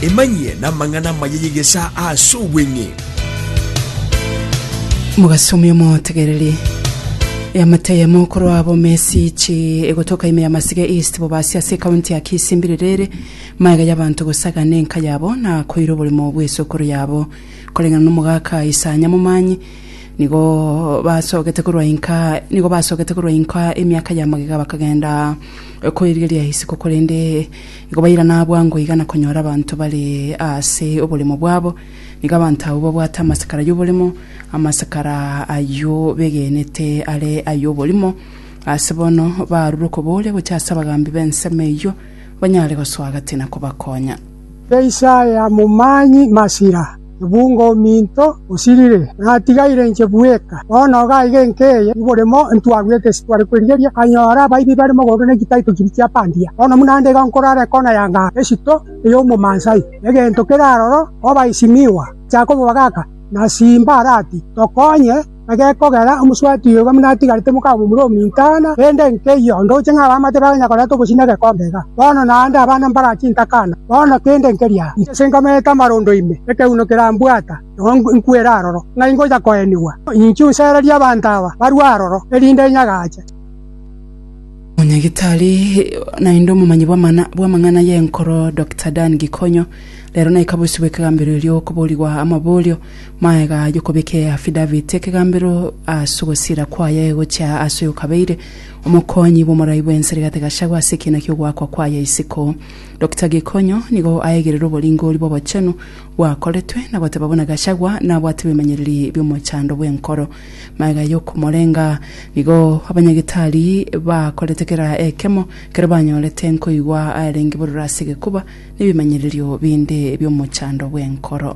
Emanyie namang'ana amaya y'egesaa aase obweng'e. Mogasomia omotegereri yamata ya mokoro abo mesichi egotoka ime ya masige east bobasi ase ekaunti ya kisi mbirerere maega y'abanto gosagana enka yabo na koira oborimo bw'esokoro yabo koreng'ana n'omogaka isanya momanyi nigo basogete korwa inka nigo basogete korwa inka emiaka ya magega bakagenda Okoirigeria isiko korende igo bairana bwango iga na konyora abanto bare ase oboremo bwabo. Nigo abanto abwo babwate amasakara y'oboremo, amasakara ayio begenete are ay'oborimo. Ase bono barure okobooria gocha ase abagambi b'ensemo eyio, banyare gosoa gati na kobakonya. Keisa ya momanyi masira, ebungo ominto osirire, natigaire inche bweka. Bono iga aiga enka eye oboremo ntwarwete ase tware kwerigeria, nkanyora abaibi bare mogondo na chitaito chiria chia bandia. Bono buna nde iga nkorora ekona ya ngao esito ey'omomansayo, egento kere aroro koba esimigwa, echa kobogaka, na simba arati, Tokonye! Na gekogera omoswati oyo buna atigarete mokamomura ominto aana, rende nkeiyo ndoche ng'a abamate baganya koreta obosina egekombe iga. Bono naende abana mbagache intaka aana, bono kende nkeria. Inche nkamerete amarondo ime, ekeuno kerambwata, nigo nkwera aroro, ng'ai ngocha koenigwa? Inche onsererie abanto aba barue aroro, erinde inyagache. Omonyagitari naende omomanyi bw'amang'ana bw'amang'ana y'enkoro Dokita Dan Gikonyo rero naika bosio bw'ekegambero erio okoborigwa amaborio Magega y'okobeka eafidavit ekegambero ase ogosiira kwaye gochia ase oyokabeire omokonyi bw'omorai bw'ense rigate Gachagua ase ekiina ki'ogoakwa kwaye isiko Dokita Gikonyo nigo aegerere oboringori bw'obochenu bwakoretwe na goteba buna Gachagua nabwate bimanyereri bi'omochando bw'enkoro magega y'okomorenga nigo abanyagitari bakorete kera ekemo kero banyorete nkoigwa arenge bororo ase egekuba nebimanyererio binde bi'omochando bw'enkoro.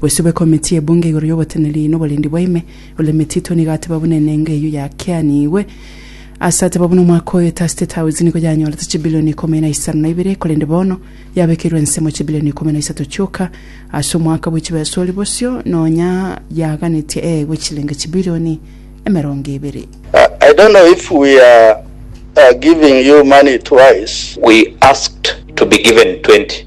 Gwesube Komiti y'Ebunge igoro y'Oboteneneri n'Oborendi bwa Ime, Oleme Tito nigo ateba buna enengo eyio yakianigwe. Ase ateba buna omwaka oyo ta State House nigo yanyorete chibilioni ikomi na isano na ibere, korende bono yabekeirwe ensemo chibilioni ikomi na isato chioka ase omwaka bwe chibesa oria bosio nonya yaganetie eegwe chilenge chibilioni emerongo ebere. I don't know if we are giving you money twice. We asked to be given 20.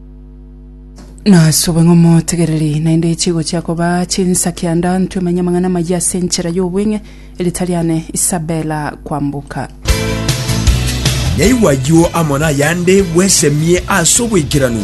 nasube ng'a omotegereri naende chigochia koba chinsa kianda ntwe manya amang'ana amaya ase enchera y'obweng'e erita riane isabela kwamboka Naigwe ayio amo nayande bwesemie ase oboikeranu.